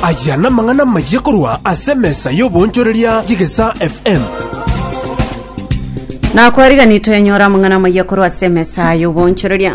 Aya namang'ana amayia korwa ase emesa y'oboonchoreria y'Egesaa FM. na kwarigani twenyora amang'ana amayia korwa ase emesa y'oboonchoreria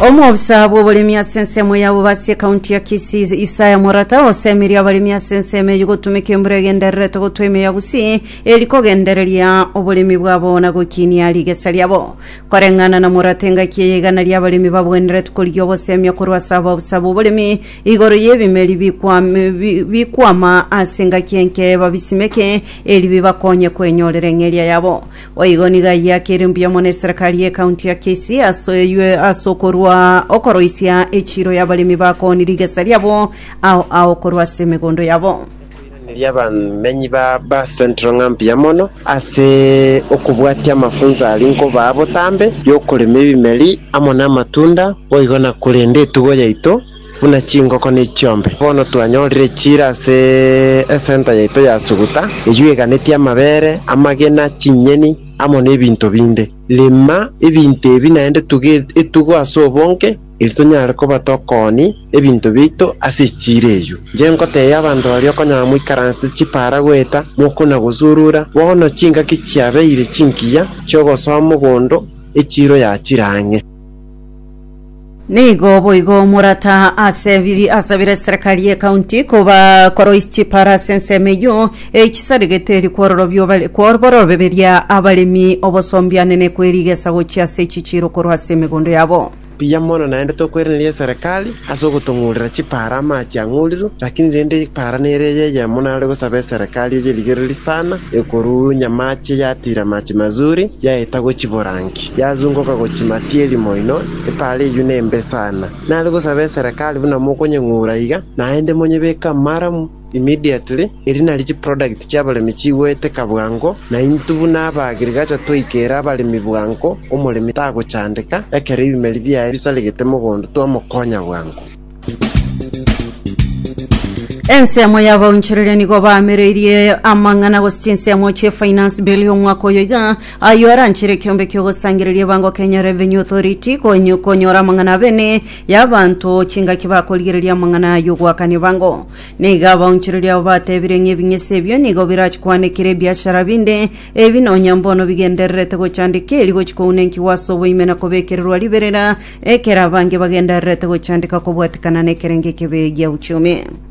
omwobisa bw'oboremi ase ensemo ya bobasi ekaunti ya kisii isaya morata osemeria abaremi ase ensemo eyio gotumeka embura egendererete gotwa emeo ya gusii eri kogendereria oboremi bwabo na gokinia rigesa riabo Koreng'ana na morata engaki eye igana ri'abaremi babwenerete korigia ogosemia korwa ase ababusa b'oboremi igoro y'ebimeri bikwam- bi- bikwama ase engaki enke babisimeke eri bibakonye kwenyorera eng'eria yabo. Boigo nigo ayio akere mbuya mono eserekari y'ekaunti ya Kisii ase yue- ase okorwa okoroisia echiiro y'abaremi bakoonirie egesa riabo ao ao korwa ase emegondo yabo. Koiraneria abamenyi ba Central ng'a mbuya mono ase okobwatia amafunso aria nkobaa botambe y'okorema ebimeri amo namatunda boigo na korenda etugo yaito buna chingoko na echiombe. Bono twanyorire echiira ase esenta yaito ya Suguta eyio eganetie amabere, amagena, chinyeni amo nebinto binde. Rema ebinto ebi naende tuge etugo ase obonge. Erio tonyare koba tokoonia ebinto biaito ase echiira eyio. Inche nkoteebia abanto baria okonyora moikaransete chipara goeta mokuna gosurura, bono chingaki chiabeire chinkiya chi'ogosoa mogondo echiiro yachire ang'e. Nigo boigo morata asebiri asabire serekari y'ekaunti koba koroisia chipara ase ensemo eyio, eyi chisaregeteiri kwororobio bare kwoboroberia abaremi obosombiane ne kwerigesa gochia ase echichiiro korwa ase emegondo yabo. Mbuya mono naende tokwereneria eserekari ase ogotong'urera chipaara amache ang'urirwe, lakini rende epaara nere eye eyemo nare gosaba eserekari eye rigereri sana, ekoruunya amache yatiira amache mazuri, yaeta gochia borangi, yazungoka gochia matieri moino, epaara eyio nembe sana. Nare gosaba eserekari buna mokonyeng'ura iga, naende monyebeke amaramu. Immediately, erio nario chiproduct chi'abaremi chigoeteka bwango, na intwe buna aba agriculture twaikera abaremi bwango, omoremi tagochandeka, ekero ebimeri biaye bisaregete mogondo twamokonya bwango. Ensemo y'abaonchoreria nigo baamereirie amang'ana gose chinsemo chie finance bill y'omwaka oyo iga, ayio aranchere ekeombe ki'ogosangereria ebango Kenya Revenue Authority, koeny- konyora amang'ana abene y'abanto chingaki bakorigereria amang'ana y'ogoakania ebango. Nigo abaonchoreria abo batebire ng'a ebing'ese ebio nigo birachie koanekera ebiashara binde, ebi nonya mbono bigendererete gochandeka eri gochia kounenkigwa ase oboime na kobekererwa riberera, ekero abange bagendererete gochandeka kobwatekana nekerengo ekebe gia uchumi.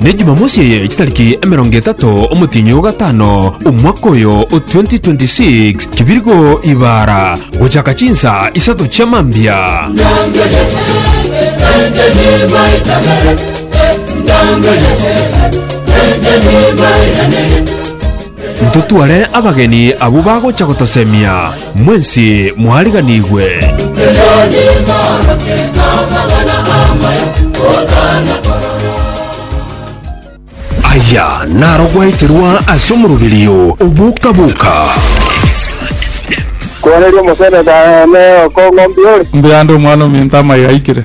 Ne Jumamosi eye chitariki emerongo etato omotienyi o gatano omwaka oyo o 2026, kibirgo ibara gochaka chinsa isato chia mambia. Nyangerereee, encheni mbairanerie. Ntotware abageni abwo bagocha gotosemia, mwensi mwariganigwe. Aya narogweterwa ase omoroberio oboka-boka. Kwenerwa omosenete aye, ne okong'u mbiore. Mbuya ande omwana ominto amaiga aikire.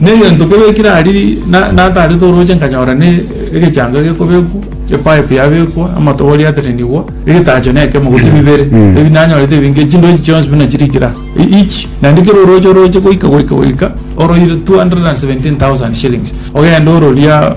Negento kebekire aria natarete orooche nkanyora ne egechango gekobekwa, epipe yabekwa, amatobori aterenigwa, egetacho nekemo gose bibere. Ebi nanyorete ebinge, chindochi chionsi buna chirikire aa. Each, naende kera orooche orooche goika goika goika, oroire 217,000 shillings. Ogende ororia.